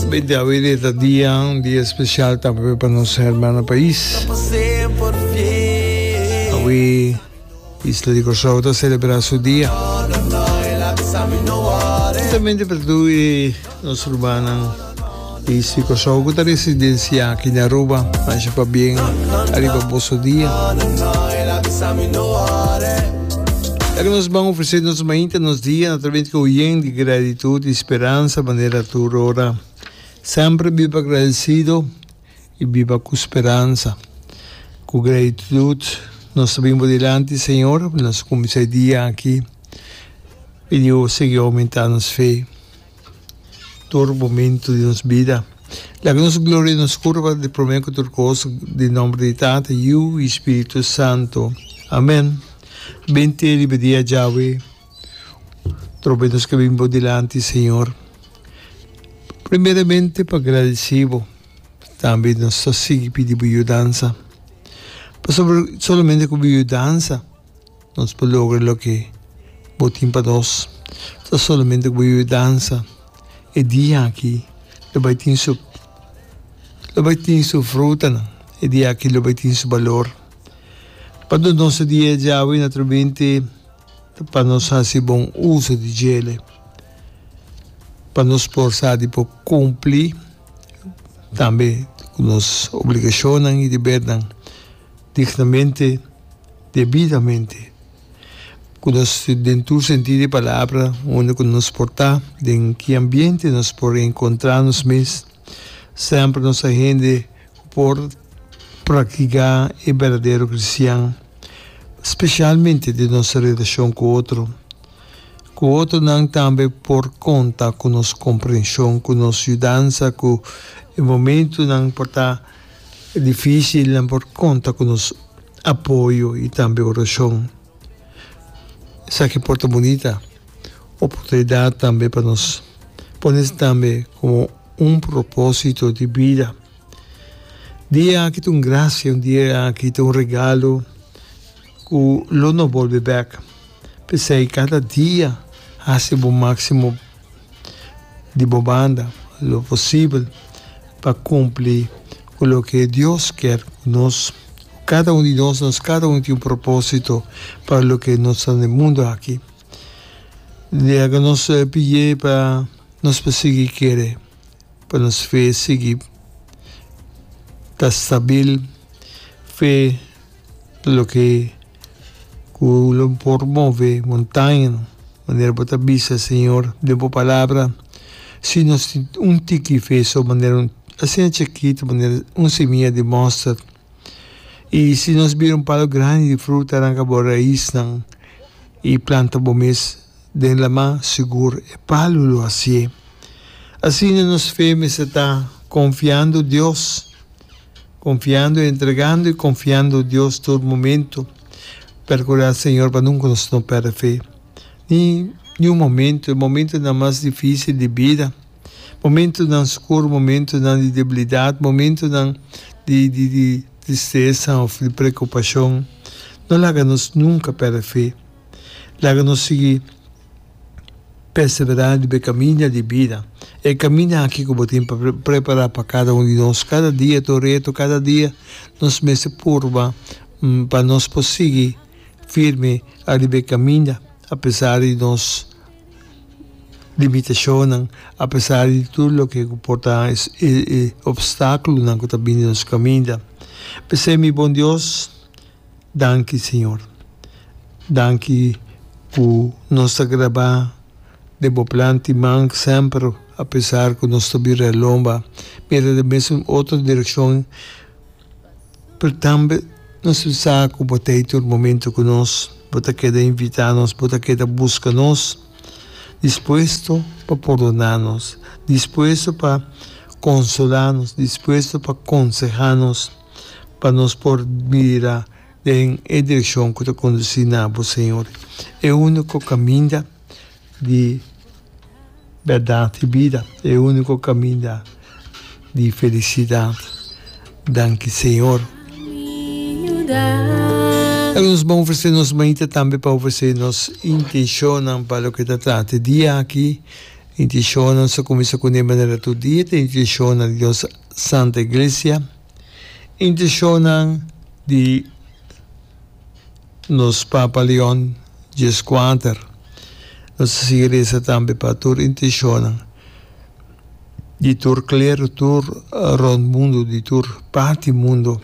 Bendito awe dia ta dia, un dia especial tambe pa nos hermano pais. Awe isla di Corsou ta celebra su dia. Justamente pa tur e. Nos rubanan di Distrik Kòrsou ku ta residensia aki na Aruba, mashá pabien ariba boso dia. Esaki nos ban ofresé nos mainta nos dia na trabenta ku oyen di gratitut i speransa manera tur ora. Semper biba gradesido i biba ku speransa. Ku gratitut nos ta bin bo dilanti, Señor, nos kuminsá e dia aki. Pidiu Bo sigui oumentá nos fe. tur momentu di nos bida. Laga nos gloria nos curba di prome cu tur cos den nomber di Tata, Yu y Spiritu Santo. Amen. Bin te riba di a Jahwe trobe nos ke bin bo dilanti Señor. Primeramente pa gradeci bo. Tambe nos ta sigui pidi bo yudansa. Pasobra solamente cu bo yudansa. Nos por logra loke bo tin pa nos ta solamente ku bo yuwe dansa. E dia aki lo bai tin su lo bai tin su frutanan. E dia aki lo bai tin su balor. Pa nos nos e dia yawe naturalmente pa nos hasi bon uso di djele pa nos por sa di por kumpli tambe ku nos obligashonnan i debernan. Dignamente, debidamente, ku nos den tur sentido di palabra, unda ku nos por ta, den ki ambiente nos por enkontrá nos mes, semper nos ta hende ku por praktiká e berdadero kristian, spesialmente den nos relashon ku otro, ku otronan tambe por konta ku nos komprenshon, ku nos yudansa, ku e momentunan por ta. E difisilnan por konta ku nos apoyo i tambe orashon. Esaki por ta bunita oportunidat tambe pa nos pone esei tambe komo un propósito di bida. Dia aki ta un grasia, un dia aki ta un regalo ku lo no bolbe bèk. P'esei kada dia hasi bo máksimo. di bo banda lo posibel pa kumpli ku loke Dios kier ku nos. Kada un di nos, nos kada un tin un propósito pa loke nos ta den e mundu aki. Dia ku nos pidié pa nos por sigui kere, pa nos fe sigui ta stabil, fe loke Cu lo por move montañanan. Manera bo ta bisa, Señor, den bo Palabra, si nos tin un tiki fe so manera, asina chikito manera un simia di mustard, y si nos bira un palo grandi di fruta, aranca bo raisnan y planta bo mes den lama, sigur e palo lo hacié. Asina nos fe mester ta confiando Dios. Konfiando i entregando i konfiando Dios tur momentu. Perkurá Señor pa nunka nos no pèrdè fe ni niun momentu, e momentunan mas difísil di bida, momentunan skur, momentunan di debilidat, momentunan di di tristesa òf di prekupashon. No laga nos nunka pèrdè fe. Laga nos sigui. Perseverá riba e kaminda di bida. E kaminda akí ku bo tin pa prepará pa kada un di nos kada dia, tur reto kada dia, nos mester purba pa nos por sigui firme ariba e kaminda apesar di nos limitashonnan, apesar di tur loke ku por ta e opstákulonan ku ta bini nos kaminda. P'esei mi bon Dios. Danki Señor. Danki cu nos ta grabá den bo plan tin man semper apesar cu nos ta bira lomba, bira den mesun otro direccion, pero tambe nos ta sa cu bo ta ei tur momento cu nos, bo ta keda invitá nos, bo ta keda busca nos, dispuesto pa pordona nos, dispuesto pa consola nos, dispuesto pa consehá nos. pa nos por bira den e direkshon ku ta kondusí na Bo, Señor, e úniko kaminda di bèrdat i bida, e úniko kaminda di felisidat. Danki, Señor. Ahora nos bon ofresé nos mañita tambe pa ofresé nos intenshonnan pa loke ta trata e dia aki. Intenshonnan sa kuminsá kuné manera tur dia ta intenshonnan di nos. Santa Iglesia, intishonnan di nos Papa Leon Djeskwater. Nos a sigui resa tambe pa tur intishonnan di tur klero, tur rond mundu, di tur parti mundu.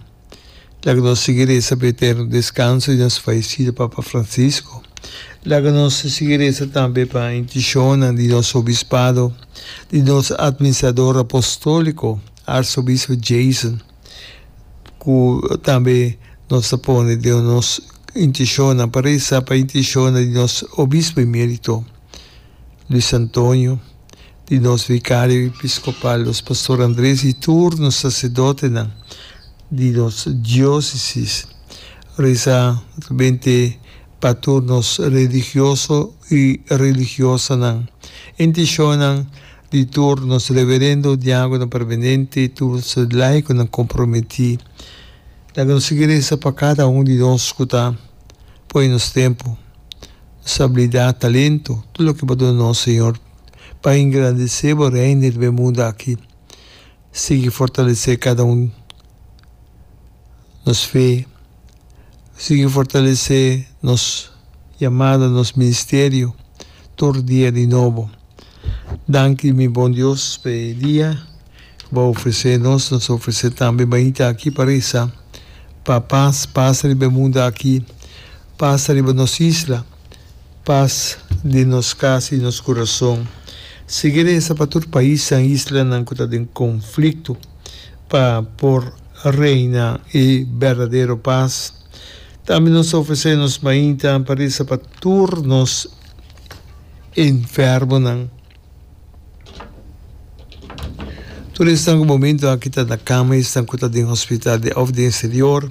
Laga nos sigui resa pa e eterno descanso di nos fallecida Papa Francisco. Laga nos sigui resa tambe pa intencionnan di nos Obispado, di nos Administrador Apostolico, Arzobispo Jason, cu tambe nos ta pone den nos intencionnan pa resa pa intencionnan di nos Obispo Emerito Luis Antonio, di nos Vicario Episcopal, nos Pastor Andres y tur nos Sacerdotenan di nos Diocesis. Reza notamente pa tur nos religioso y religiosanan, intencionnan di tur nos Reverendo Diagonan Permanente y tur nos laiconan comprometi. Laga nos sigui reza pa cada un di nos cu ta pone nos tempo, nos habilidad, talento, tur loke bo duna nos, Señor. pa engrandecé bo Reino riba e mundo aki. Sigui fortalecé cada un nos fe, sigui fortalecé nos yamada, nos ministerio tur dia di nobo. Danki mi bon Dios pa e dia cu bo a ofrecé nos. Nos a ofrecé tambe bañita aki pa reza pa paz pasa riba e mundo aki, pasa riba nos isla. Pas den nos kas i nos kurason. Sigui resa pa tur paisnan i islanan ku ta den konflikto pa por reina e berdadero pas. Tambe nos ta ofresé nos mainta pa resa pa tur nos enfermonan. Tur esnan ku momentu aki ta na kama i esnan ku ta den hospital de òf den eksterior,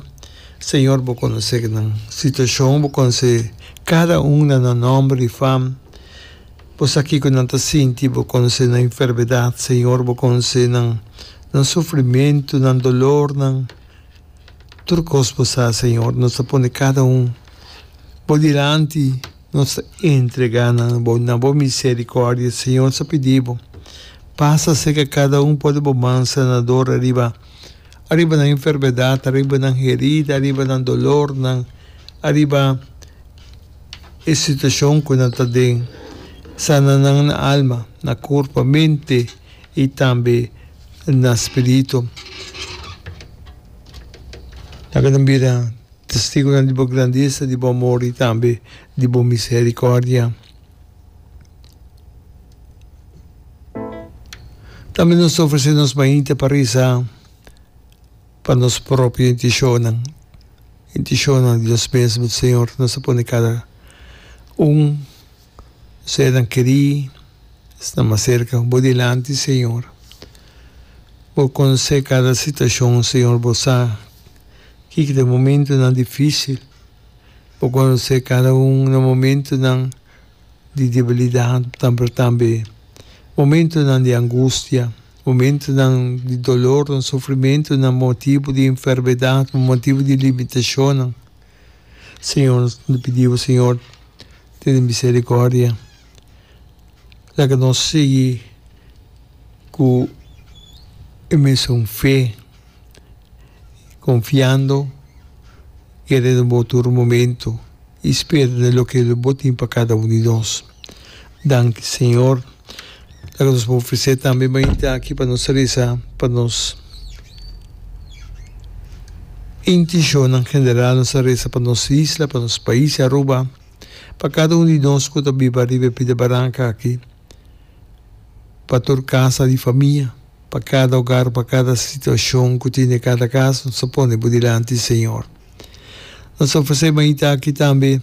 Señor, Bo konosé nan situashon. Bo konosé kada un na nan nòmber i fam. Bo sa kiko nan ta sinti. Bo konosé nan enfermedat, Señor. Bo konosé nan nan sufrimentu, nan dolornan. Tur kos Bo sa, Señor. Nos ta pone kada un Bo dilanti. Nos ta entrega nan na bo misericordia, Señor sa pidi bo, pasa cerca cada un po di bo man sanador ariba, ariba nan enfermedad, ariba nan herida, ariba nan dolornan, ariba e situacion cu nan ta den, sana nan na alma, na curpa, mente y tambe na spirito. Laga nan bira. Testigonan di bo grandesa, di bo amor i tambe di bo misericordia. Tambe nos ta ofrece nos mainta pa reza pa nos propio intencionnan, intencionnan di nos mes, Señor, nos ta pone cada un. Sedan kerí sta mas serka. Bo dilanti, Señor. Bo konsé kada situashon, Señor. Bo sa kiko ta e momentunan difísil. Bo konsé kada un na momentunan di debilidat, pero tambe momentunan di angustia, momentunan di dolornan, sufrimentunan pa motibu di enfermedat, pa motibu di limitashonnan. Señor, nos ta pidi bo, Señor, tene misericordia. Laga nos sigui cu e mesun fe, confiando, querendo bo tur momento y spera loke bo tin pa cada un di nos. Danki Señor. Loke nos por ofrece tambe mainta aki pa nos reza pa nos intencionnan general, nos ta reza pa nos isla, pa nos pais Aruba, pa cada un di nos cu ta biba riba e pida baranca aki, pa tur casa di famia, pa cada hogar, pa cada situacion cu tin den cada casa, nos ta pone bo dilanti Señor. Nos ta ofrece mainta aki tambe.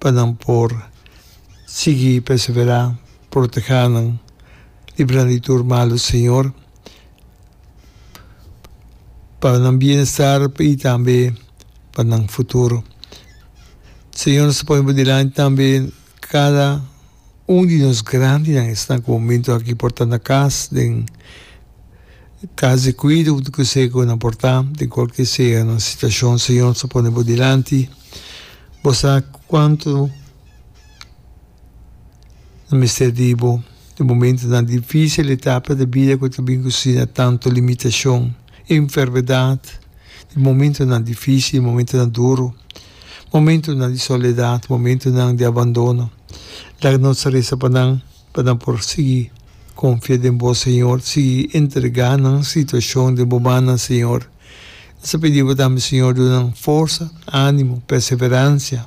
pa nan por sigui perseverá, protegá nan, libra nan di tur malu, Señor, pa nan bienestar i tambe pa nan futuro. Señor, nos ta pone bo dilanti tambe kada. Un di nos grandinan esnan ku momentu aki por ta na kas, den kas di kuido di kuse ku nan por ta, den kualkier sea nan situashon Señor sa pone bo dilanti. Bo sa kuantu nan mester di bo. E momentunan difísil, etapa di bida ku ta bin ku si na tantu limitashon. Enfermedad, di momentonan difícil, momentonan duru, momentonan di soledad, momentonan di abandono. Laga nos resa pa nan pa nan por sigui confia den Bo, Señor, sigui entrega nan situacion den Bo mannan, Señor. Nos ta pidi Bo tambe, Señor, duna nan forsa, animo, perseverancia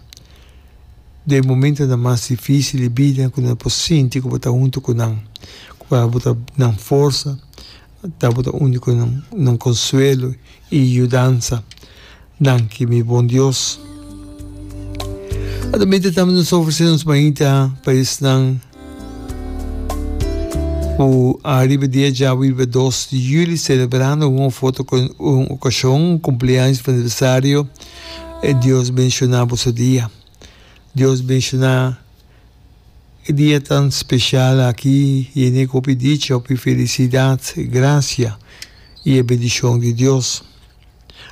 den momentonan mas difícil di bida cu nan por sinti cu Bo ta hunto cu nan, cu Bo ta nan forsa. Ta bo ta unico nan, nan consuelo y yudansa. Danki mi bon Dios. Ora mientras tambe nos ta ofrece nos mainta pa esnan cu ariba dia djabu riba dos di juli celebrando un of otro ocasion, cumpleaños of aniversario, Dios bendiciona boso dia. Dios bendiciona. E dia tan special aki yene cu hopi dicha, hopi felicidad, gracia y e bendicion di Dios.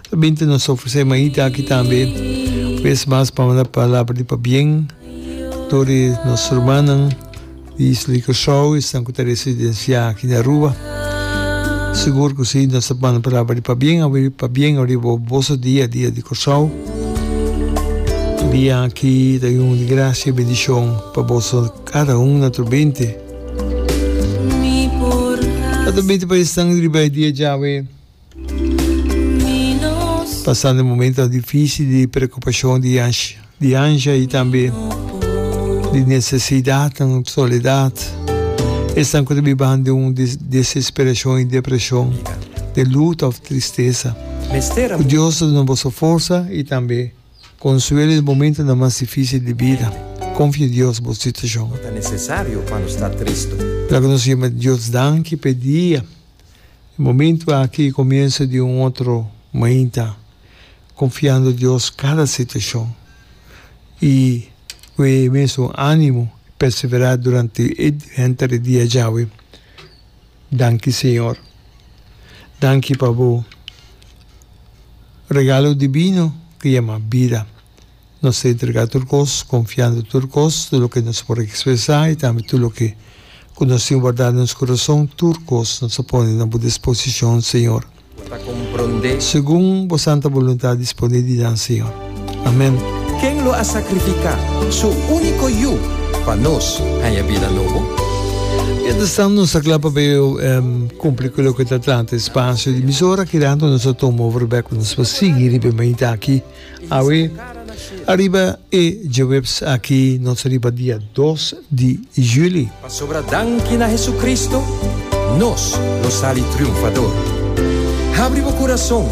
Ta bin ta nos ofrece mañita aki tambe un bes mas pa manda palabra di pabien dor di nos rumannan di Isla di Curaçao, esnan cu ta residencia aki na Aruba. Sigur ku si, nos ta banda palabra di pabien awe pabien ariba bo boso dia, dia di Kòrsou. Dia aki ta yunt di grasia i bendishon pa boso kada un na tur binti. Ato binti paes nan riba e dia djawe. Pasando momentonan difísil di preokupashon di ansha i tambe di nesesidatnan, soledat, esnan ku ta bibanan den un desesperashon i depreshon, den luta òf tristesa. Ku Dios ta duna boso forsa i tambe konsuelo den momentonan mas difísil di bida. Konfia Dios bo situashon. Laga nos yama Dios danki pa e dia. E momentu aki komienso di un otro mainta, konfiando Dios kada situashon i ku e mesun ánimo perseverá durante e henter di dia djawe. Danki Señor. Danki pa Bo regalo dibino ku yama bida. Nos ta entrega tur cos, confiando tur cos, tur loke nos por expresa y tambe tur loke cu nos tin warda den nos corazon, tur cos nos a pone na bo disposicion, Señor. Segun bo santa boluntad disponé di nan, Señor. Amen. Ken lo a sacrifica su unico Yu pa nos haña bida nobo? Mientras tanto nos ta cla pa bay cumpli cu loke ta atlanta espacio di emisora, kirando nos a tuma over bek cu nos por sigui riba e mainta aki. Awe, ariba e djaweps aki nos riba dia dos di juli. Pasobra danki na Hesucristo nos lo sali triunfador. Habri bo curason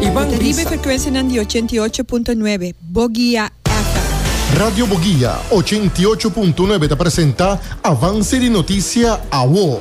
y ban Ta riba e frecuencianan di ochenta i ocho punto nuebe, Boguia FM. Radio Boguia ochenta i ocho punto nuebe ta presenta avance di noticia awo.